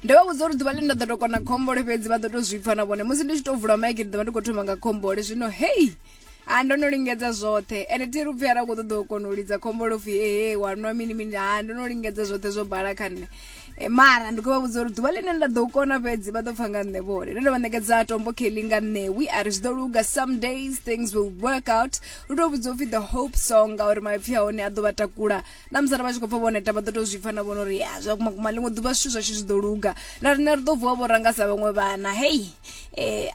ndo vha vhudza uri ḓuvha ḽine nda ḓo to kona khombole fhedzi vha ḓo to zwi pfa na vhone musi ndi tshi to vula maiki ndi ḓo vha ndi khou thoma nga khombole zwino hei a ndo no lingedza zwoṱhe ende thi ri upfhi ara khou ṱoḓa u kona u lidza khombole upfhi ehe wa nwa mini mini ha ndo no lingedza zwoṱhe zwo bala kha nṋe Eh, mara ndi khou vha vhudza uri ḓuvha ḽine nda ḓo kona fhedzi vha ḓo pfa nga nṋe vhone ndo ndo vha ṋekedza tombo kelly nga ṋewi a ri zwi ḓo luga some days things will work out lu tou vhudzwa upfhi the hope song ngauri maipfhi a hone a ḓo vha takula na musi arali vha tshi khou pfa vho neta vha ḓo tou zwi pfa na vhona uri ya zwa kuma kuma ḽiṅwe ḓuvha zwithu zwashu zwi ḓo luga na riṋe ri ḓo vuwa vho ranga sa vhaṅwe vhana hei eh,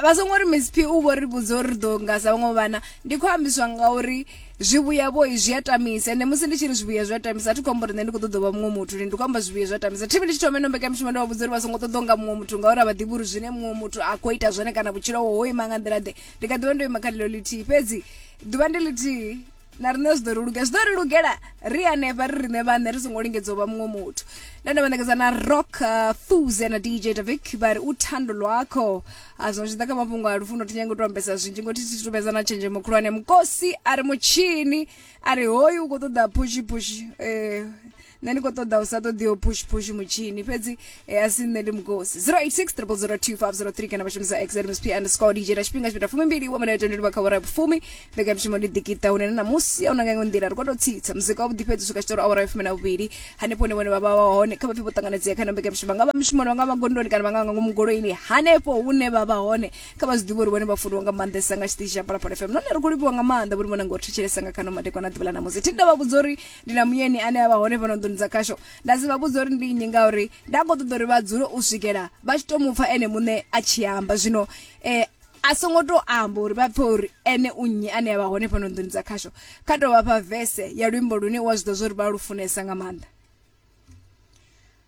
vha songo ri miss p u vho ri vhudza uri ri ḓo nga sa vhaṅwe vhana ndi khou ambiswa ngauri zwivhuya vho zwi a tamisa ende musi ndi tshi ri zwivhuya zwi a tamisa a thi khou amba uri nṋe ndi khou ṱoḓa u vha muṅwe muthu ndi khou amba zwivhuya zwi a tamisa thivi ndi tshi thoma ino mbekamishumo ndi vha vhudza uri vha songo ṱoḓa u nga muṅwe muthu ngauri a vha ḓivhi uri zwine muṅwe muthu a khou ita zwone kana vhutshilo ho ima nga nḓila ḓe ndi kha ḓivha ndo ima kha ḽilo ḽithihi fhedzi ḓuvha ndi ḽithihi na riṋe zwi ḓo ri luge zwi ḓo ri lugela ri hanefha ri riṋe vhaṋe ri songo lingedza u vha muṅwe muthu nda nda vhaṋekedza na rock uh, thuze na dj davic vha ri u thando lwakho a ah, zwino zwi ḓa kha mafhungo a lufuno thi nyange u to ambesa zwinzhi ngo thi thi tumedza na tshenzhemo khulwane mukosi a ri mutshini a ri hoyu u khou ṱoḓa phushi phushi um eh, nṋe ndi khou ṱoḓa u sa ṱoḓiho push push mutshini fhedzi e a si nṋe ndi mukosi 0860002503 kana vha shumisa xmsp underscore dj na tshifhinga tshipita fumi mbili wa minete ndi livha kha awara ya vhufumi mbekanyamushumo ndi ḓikita hune na ṋamusi a una nga iṅwe nḓila ri khou tou tsitsa muzika wa vhuḓi fhedzi u swika tshitori awara ya fumi na vhuvhili hanefho hune vhone vha vha wa hone kha vha pfhe vho ṱanganedzea kha na mbekanyamushumo nga vha mishumoni vha nga vha gondoni kana vha nga nga ngomu goloini hanefho hune vha vha hone kha vha zwi ḓivhe uri vhone vha funiwa nga maanḓesa nga tshiṱitshi tsha palapala fm nahone ri khou livhiwa nga maanḓa vhone vhona ngo ri thetshelesa nga khano madekwana ḓuvha ḽa ṋamusi thi nda vha vhudza uri ndi na muyeni ane a vha hone fhano nḓuni dza khasho nda si vha vhudza uri ndi nnyi ngauri nda khou ṱoḓa uri vha dzule u swikela vha tshi tou mu pfa ene muṋe a tshi amba zwino um a songo tou amba uri vha pfe uri ene u nnyi ane a vha hone fhano nḓuni dza khasho kha tou vha fha vese ya luimbo lune u a zwi ḓivha zwa uri vha lu funesa nga maanḓa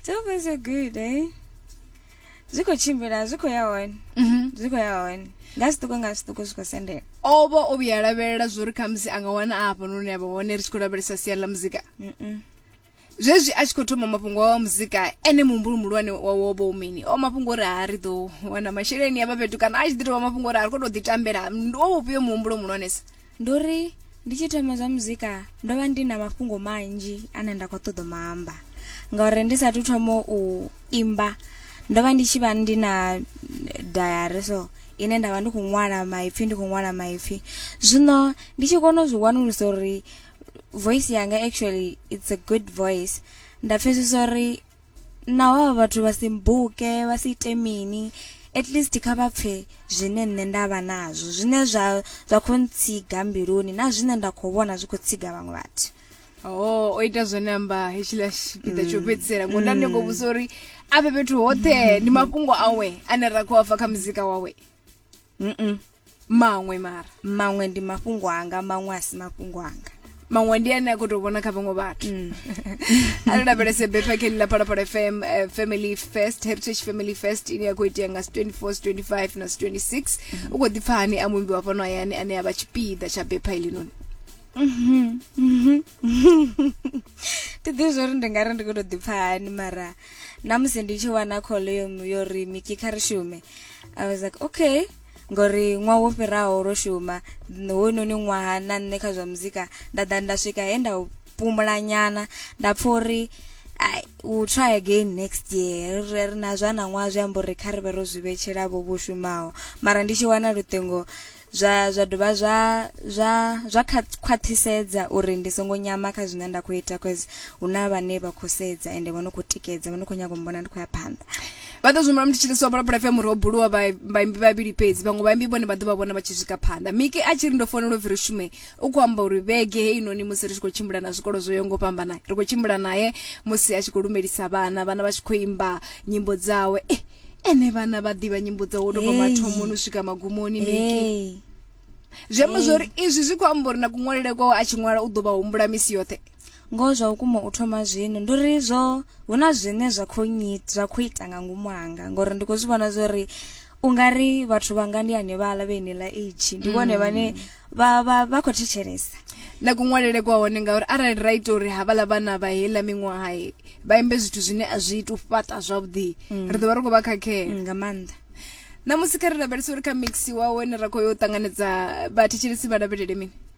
It's always a good day. Zwi khou tshimbila, zwi khou ya hone. Mhm. Zwi khou ya hone. Nga zwiṱuku nga zwiṱuku zwi khou sendela. o vha o vhuya a lavhelela zwo ri khamusi a nga wana a hafha noni a vha hone ri tshi khou lavhelesa sia ḽa muzika Mm-mm. zwezwi a tshi khou thoma mafhungo awa muzika ene muhumbulo muhulwane wa wo vha u mini o mafhungo uri ha ri ḓo wana masheleni ya vha fhethu kana a tshi ḓi tovha mafhungo uri a ri khou tou ḓitambela ndi wo vhufhio muhumbulo muhulwanesa ndi uri ndi tshi thoma zwa muzika ndo vha ndi na mafhungo manzhi ane nda khou ṱoḓa maamba ngauri ndi sathu thoma u imba ndo vha ndi tshi vha ndi na dayari so ine nda vha ndi khou ṅwala maipfhi ndi khou ṅwala maipfhi zwino ndi tshi kona u zwi wanulusa uri voice yanga actually it's a good voice nda pfhesesa uri naho avha vhathu vha si mbuke vha si ite mini at least kha vha pfhe zwine nṋe nda vha nazwo zwine zwa zwa khou ntsiga mbiluni na zwine nda khou vhona zwi khou tsiga vhaṅwe vhathu Oh, o ita zwone amba hetshiḽa tshipiḓa tsho fhedzisela ngoda ndi ngo vhusa uri a vhe fhethu hoṱhe ndi mafhungo awe ane ra khou a pfa kha muzika wawe Mm-mm. maṅwe mara maṅwe ndi mafhungo anga maṅwe a si mafhungo anga maṅwe ndi ane a khou tou vhona kha vhaṅwe vhathu mm. a ri lavhelese bethwakheli ḽa phalaphala fm uh, family fest heritage family fest ine ya khou itea nga 24 25 na 26 mm. u khou ḓi pfa hani a muimbi wa fhano hayani ane a vha tshipiḓa tsha bepha ilinoni ti ḓivhi zwo ri ndi nga ri ndi khou tou ḓi pfa hani mara na musi ndi tshi wana call yo ri miki kha ri shume i was like okay Ngori ṅwaha wo fhiraho ro shuma hoyunoni ṅwaha na nṋe kha zwa muzika nda ḓa nda swika he nda pumula nyana nda pfha uri ai u try again next year ri ri na zwa na ṅwaha zwi amba uri kha ri vhe ro zwi vhetshela vho vho shumaho mara ndi tshi wana luṱingo zwa zwa dovha zwa zwa zwa khwaṱhisedza uri ndi songo nyama kha zwine nda khou ita cause hu na vhane vha khou sedza ende vha no khou tikedza vha no khou nyanga u mbona ndi khou ya phanḓa Vha ḓo zwi humbula musi tshi ḽisiwa bola bola FM uri ho buliwa vhaimbi vhavhili fhedzi vhaṅwe vhaimbi vhone vha ḓo vha vhona vha tshi swika phanḓa miki a tshi ri ndo founela upfi ri shume u khou amba uri vhege heinoni musi ri tshi khou tshimbila na zwikolo zwo yaho ngo fhambana ri khou tshimbila naye musi a tshi khou lumelisa vhana vhana vha tshi khou imba nyimbo dzawe eh, ene vhana vha ḓivha nyimbo dzawe u tou bva mathomoni u swika magumoni miki zwi amba zwori izwi zwi khou amba uri na kuṅwalele kwawe a tshi ṅwala u ḓo vha humbula misi yoṱhe Ngoho zwa vhukuma u thoma zwino ndi uri zwo hu na zwine zwa khou nyita zwa khou ita nga ngomu hanga ngori ndi khou zwi vhona zwa uri u nga ri vhathu vhanga ndi hanevhala vhe nila age ndi vhone vhane vha vha vha khou thetshelesa na kuṅwalele kwa hone ngauri arali ra ita uri havhaḽa vhana vha heiḽa miṅwaha vha imbe zwithu zwine a zwi ita u fhaṱa zwavhuḓi mm. ri ḓo vha ri khou vha khakhela mm, nga maanḓa na musi kha ri lavhelesa uri kha mix wawe ne ra khou yo ṱanganedza vhathetshelesi vha lavhelele mini